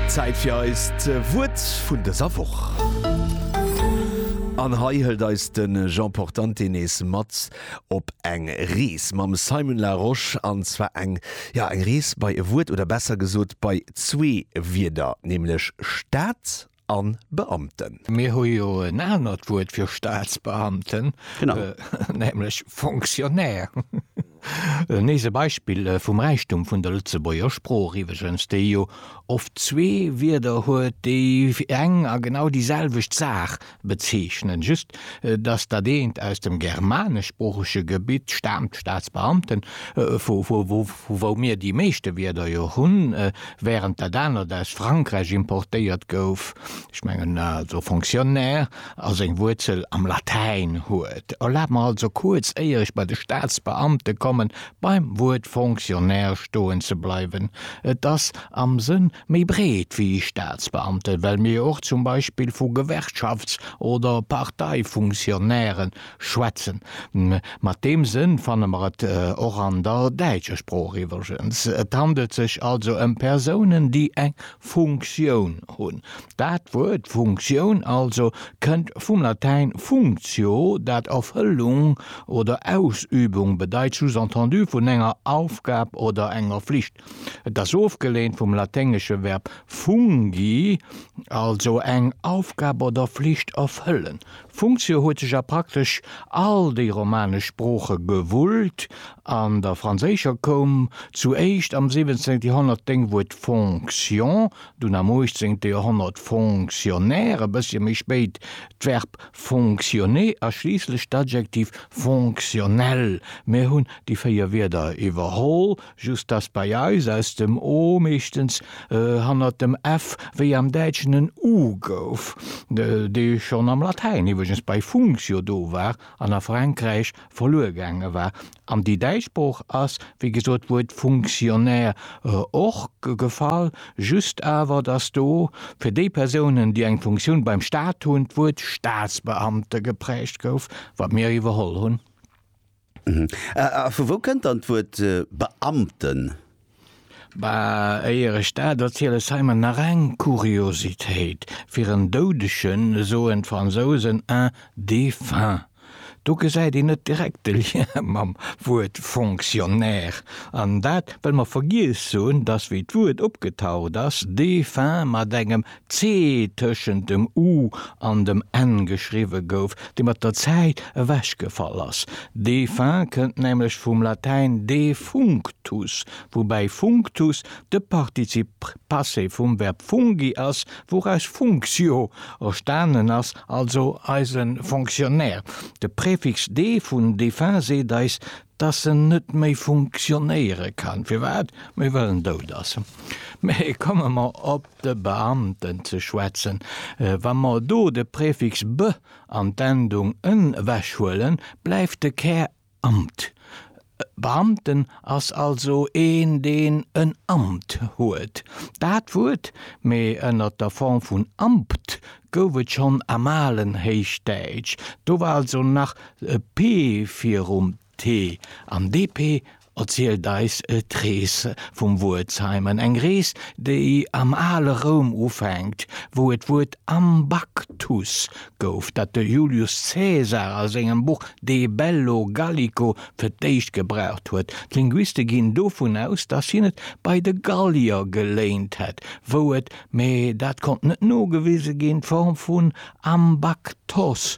Zäit fir eist Wuert vun dëser Woch. An hei hëlt eis de Jean Portante nees mat op eng Rees mam Simon Larosche, an zwar eng, ja eng Rees bei e Wuert, oder besser gesot bei zwee Wierder, nämlech Stad a Beamten. Mir hu jo en anert Wuert fir Staatsbeamten, nämlech Fonctionnaire. Nees e Beispill vum Räichtum vun der Lëtzebuerger Sprooch iwweregens, déi jo oft zwee Wierder huet, déi eng a genau déi selwecht Saach bezeechnen, just datt dat eent aus dem germaneschsproochege Gebitt staamt, Staatsbeamten, vu wou mir déi meeschte Wierder jo hunn, während dat anert aus Frankräich importéiert gouf, ech mengen also Fonctionnaire, a seng Wuerzel am Latäin huet. Erlaabt mer also kuerz, éier ech bei de Staatsbeamte kommen, beim Wuert Fonctionnaire stoen ze bleiwen. Et ass am Sënn méi breet wéi Staatsbeamten, well mir jo och zum Beispill vu Gewerkschafts oder Parteifunktionären Schwätzen. Mat deem Sënn fanne mer et och an der däitscher Sprooch iwwergens. Et handelt sech also ëm Persounen, déi eng Funktioun hunn. Dat Wuert Funktioun also kënnt vum Latäin functio, dat Erfëllung oder Ausübung bedeit, sous-entendu vun enger Aufgab oder enger Flicht. Et ass ofgeleent vum laténgesche Verb fungi, also eng Aufgab oder Flicht erfëllen. Funktio huet sech a praktesch all déi romanesch Sprooche gewullt, an der franséischer koum zu éischt am 17. Joerhonnert d'Déngwuert fonction, dunn am 18. Joerhonnert fonctionnaire, e bëssche méi spéit d'Verb fonctionner a schliisslech d'Adjektiv fonctionnel. Mir hunn déi véier Wierder iwwerholl. just dass bei eis aus dem o meeschtens hannert dem f wéi am Däitschen en u gouf, dee schonn am Latäin iwweregens bei functio do war an a Frankräich verluer gaange war. An déi däitsch Sprooch ass, wéi gesot, d'Wuert Funktionär och gefall, just awer, dass do fir déi Persounen, déi eng Funktioun beim Staat hunn, d'Wuert Staatsbeamte geprägt gouf, wat mir iwwerholl hunn. A vu wou kënnt dann d'Wuert Beamten? Bah, éier ech dat erzielen, ech zeien mer nach eng Kuriositéit, Fir en Doudegen soen d'Fransousen un défunt. Do gesäit een net direkt de Lien mam Wuert Fonctionnaire. An dat, well mer vergiess hunn, dass wéi d'Wuert opgetaucht ass, défunt mat engem C tëschent dem u an dem n geschriwwe gouf, dee mat der Zäit ewechgefall ass. Défunt kënnt nämlech vum Latäin defunctus, woubäi functus de Partizip passé vum Verb fungi ass, wouraus functio erstanen ass, also eise Fonctionnaire. De Prefix de vun defunt seet eis, dass en net méi funktionéiere kann. Firwat? Mee well en dout ass. Mee komme mer op de Beamten ze schwätzen. Wa mer do de Präfix be an d'Endung en ewechhuelen, bleift de Kär Amt. E Beamten ass also een, deen en Amt huet. Dat Wuert, mee ënner der Form vun Ampt, gouf et schonn am alen Héichdäitsch, do war also nach p virum. T an DP erzielt eis d'Rees vum Wuert Simon, eng Rees, déi am ale Roum ufänkt, wou et d'Wuert Ambactus gouf, dat de Julius Caesar a sengem Buch De bello Gallico fir d'éischt gebraucht huet. D'Linguiste ginn dovun aus, datt hien et bei de Gallier geléint hätt, wou et, mee dat konnt net nogewise ginn, d'Form vun Ambactos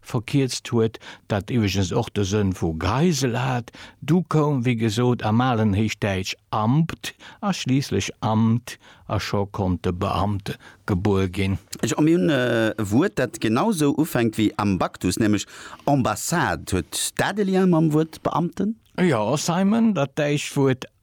verkierzt huet, dat iwweregens och de Sënn vu Geisel hat, du koum wéi gesot am alen Héichdäitsch Ambt a schliisslech Amt a scho konnt de Beamte gebuer ginn. A mir hunn e Wuert, dat genau sou ufänkt wéi Ambactus, nämlech Ambassade. Huet dat e Lien mam Wuert Beamten? Jo, Simon, dat däitscht Wuert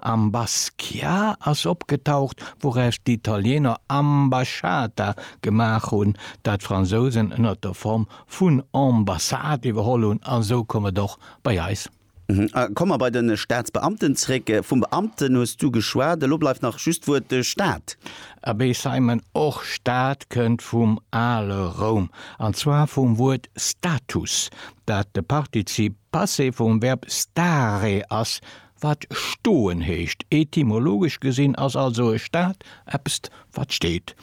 Am Basquiat ass opgetaucht, wouraus d'Italieener Ambasciata gemaach hunn, dat d'Fransousen ënnert der Form vun Ambassade iwwerholl hunn, a sou koum et och bei eis. Komme mer bei de Staatsbeamten zréck. Vum Beamten hues du geschwat, elo bleift nach just d'Wuert Staat. Abee Simon, och Staat kënnt vum ale Roum, an zwar vum Wuert status, dat de Partizip Passé vum Verb stare ass, Wat stoen heescht. Etymologesch gesinn ass also e Stat eppst wat steet.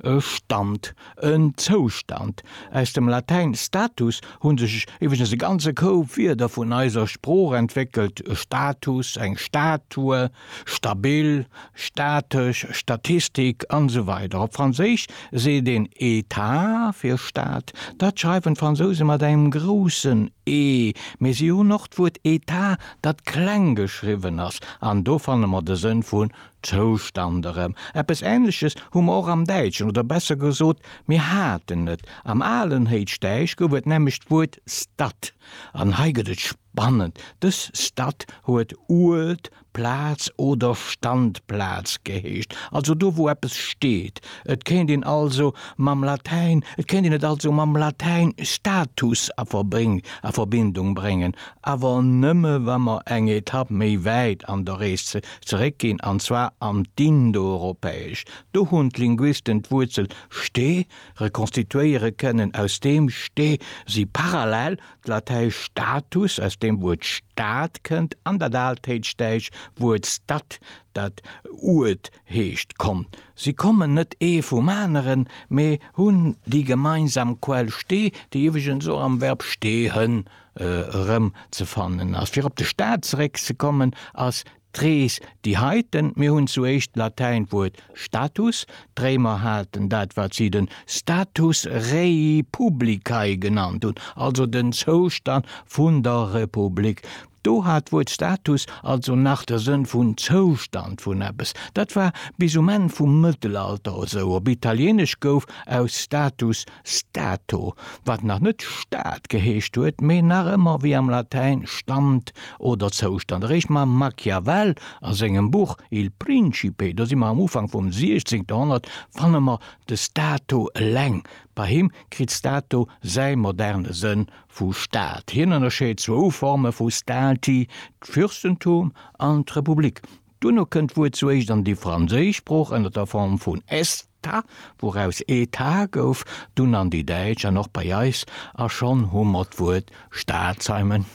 E Stand, en Zoustand. Aus dem Latäin status hu sech iwweregens e ganze Koup Wierder vun eiser Sprooch entwéckelt, Status, eng Statue, stabil, statesch, Statistik, an esou weider Op Franséisch seet een État fir Stat. Dat schreiwen d'Fransouse mat engem groussen E, mee si hunn och d'Wuert Etat dat kleng geschriwwen ass, an do fanne mer de Sënn vun Zoustand erëm. Eppes Änleches hu mer och am Däitschen, oder besser gesot, mir haten et. Am alen Héichdäisch gouf et nämlech d'Wuert Stad, an hei gëtt et spannend, dës Stad huet Uert, Plaz oder Standplaz geheescht, also do, wou eppes steet. Et kéint een also mam Latäin, et kéint een et also mam Latäin status a Verbindung bréngen, awer nëmme wa mer eng Etapp méi wäit an der Rees zeréck ginn, an zwar an d'Indoeuropäesch. Do hunn d'Linguisten d'Wuerzel ste rekonstituéiere kënnen, aus deem ste si parallel d'Latäisch status, aus deem Wuert Stad kënnt, an dat Altéitschdäitsch Wuert stad, dat Uert heescht, konnt. Si kommen net ee vum aneren, mee hunn déi gemeinsam Quell ste, déi iwweregens och am Verb stehen erëm ze fannen ass. Fir op de Staat zeréck ze kommen, ass d'Rees déi heiten. Mir hunn zu éischt d'Latäint Wuert status, d'Réimer haten dat wat si den status rei publicae genannt hunn, also den Zoustand vun der Republik. Do hat d'Wuert status also nach de Sënn vun Zoustand vun eppes. Dat war bis um Enn vum Mëttelalter esou. Op Italieenesch gouf aus status Stato, wat nach net Stad geheescht huet, mee nach ëmmer wéi am Latäin Stand oder Zoustand. Eréischt mam Machiavel a sengem Buch Il Principe, do si mer am Ufank vum 16. Joerhonnert, fanne mer de Stato eleng. Bei him kritt Stato säi moderne Sënn vu Stad. Hien ënnerscheet zwou Forme vu Stati, d'Fürstentum an d'Republik. Duerno kënnt d'Wuert zu éischt an déi franséisch Sprooch ënner der Form vun est. Ta, wouraus ee Ta gouf, dunn an déi Däitsch an och bei eis, a schonn hu mer d'Wuert Staatsheimen.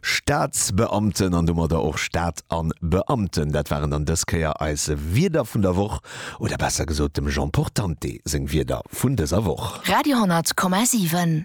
Staatsbeamten an domadder och Staat an Beamten, dat waren dann dës Kéier eis Wierder vun der Woch, oder besser gesot dem Jean Portante seng Wierder vun dëser Woch. Radio 100 Komma 7.